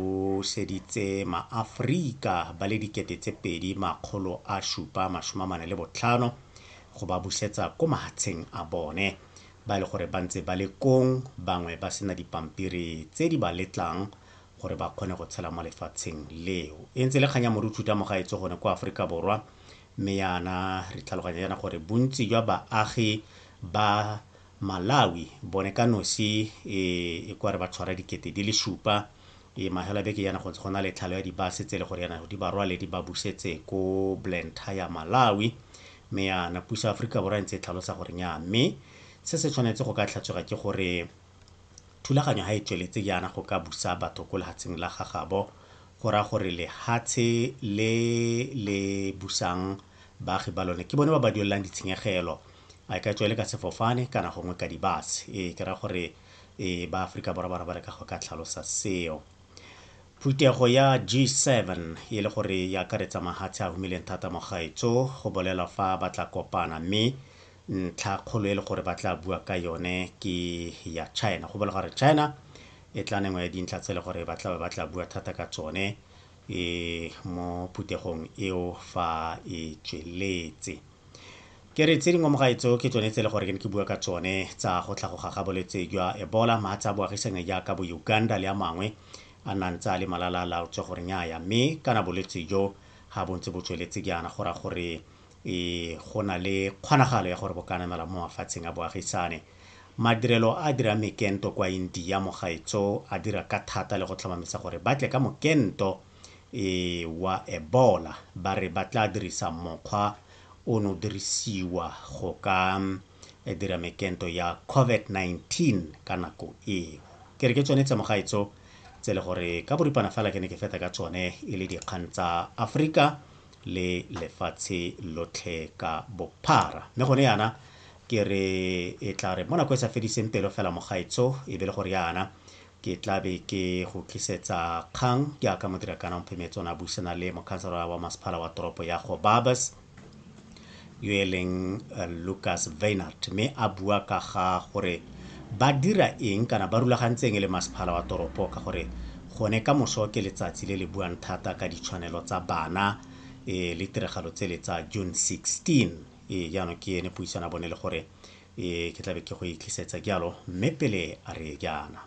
o buseditse maAforika ba le dikete tse pedi makgolo a supa masome amane le botlhano go ba busetsa ko mahatsheng a bone ba e le gore ba ntse ba le kong bangwe ba sena dipampiri tse di ba letlang gore ba kgone go tshela mo lefatsheng leo e ntse le kgang ya morutu ta mogaetso gone kwa Aforika Borwa mme yana re tlhaloganya yana gore bontsi jwa baagi ba Malawi bone ka nosi e e kware ba tshwara dikete di le supa e mahela beke yana go ntse go na le tlhalo ya dibase tse le gore yana di ba rwale di ba busetse ko Blantyre Malawi me yana puso ya Aforika Borwa e ntse e tlhalosa gore nya me se se tshwanetse go ka tlhatswega ke gore thulaganyo ha e tsweletse yana go ka busa batho ko lehatseng la gagabo go ra gore lehatshe le le busang baagi ba lone ke bone ba ba duelelang ditshenyegelo a e ka tswa e le ka sefofane kana gongwe ka di-bus. Ee, ke raya gore ba Aforika Borwa ba ne ba leka go ka tlhalosa seo. Phuthego ya G7 e le gore e akaretsa mahatshe a humileng thata mo gaetso, go bolela fa ba tla kopana mme ntlha kgolo e le gore ba tla bua ka yone ke ya China. Go bolela gore China e tla nengwe ya dintlha tse e le gore ba tlabe ba tla bua thata ka tsone mo phuthegong eo fa e tsweletse. ke re tse dingwe mogaetso ke tsone tse e le gore ke ne ke bua ka tsone tsa go tlhagoga ga bolwetse jwa ebola maatsa a boagisane jaaka bo uganda le a mangwe a nang tsa le malala laotswe gore nyaya mme kana bolwetse jo ga bontse bo tsweletse jaana go ra gore e go na le kgonagalo ya gore bo ka namela mo mafatsheng a boagisane madirelo a dira mekento kwa india mogaetso a dira ka thata le go tlhomamisa gore ba tle ka mokento e wa Ebola ba re ba tla dirisa mokgwa o no dirisiwa go ka dira mekento ya COVID-19 ka nako eo. Ke re ke tsone tse mogaetso tse le gore ka boripana fela ke ne ke feta ka tsone e le dikgang tsa Afrika le lefatshe lotlhe ka bophara mme gone yana ke re e tla re mo nako e sa fediseng pelo fela mogaetso e be le gore yana ke tla be ke go tlisetsa kgang jaaka modirakana mphemetsone a buisana le mokhanselara wa masephala wa toropo ya go babas yo e leng eh, lucas veinart mme a bua ka ga gore ba dira eng kana ba rulagantseng e le masephala wa toropo ka gore gone ka moso ke letsatsi le le buang thata ka ditshwanelo tsa bana e le tiragalo tse le tsa june 16 e jaanong ke ene puisana bone le gore Ee, ke tlabe ke go e tlisetsa jalo, mme pele a re jaana.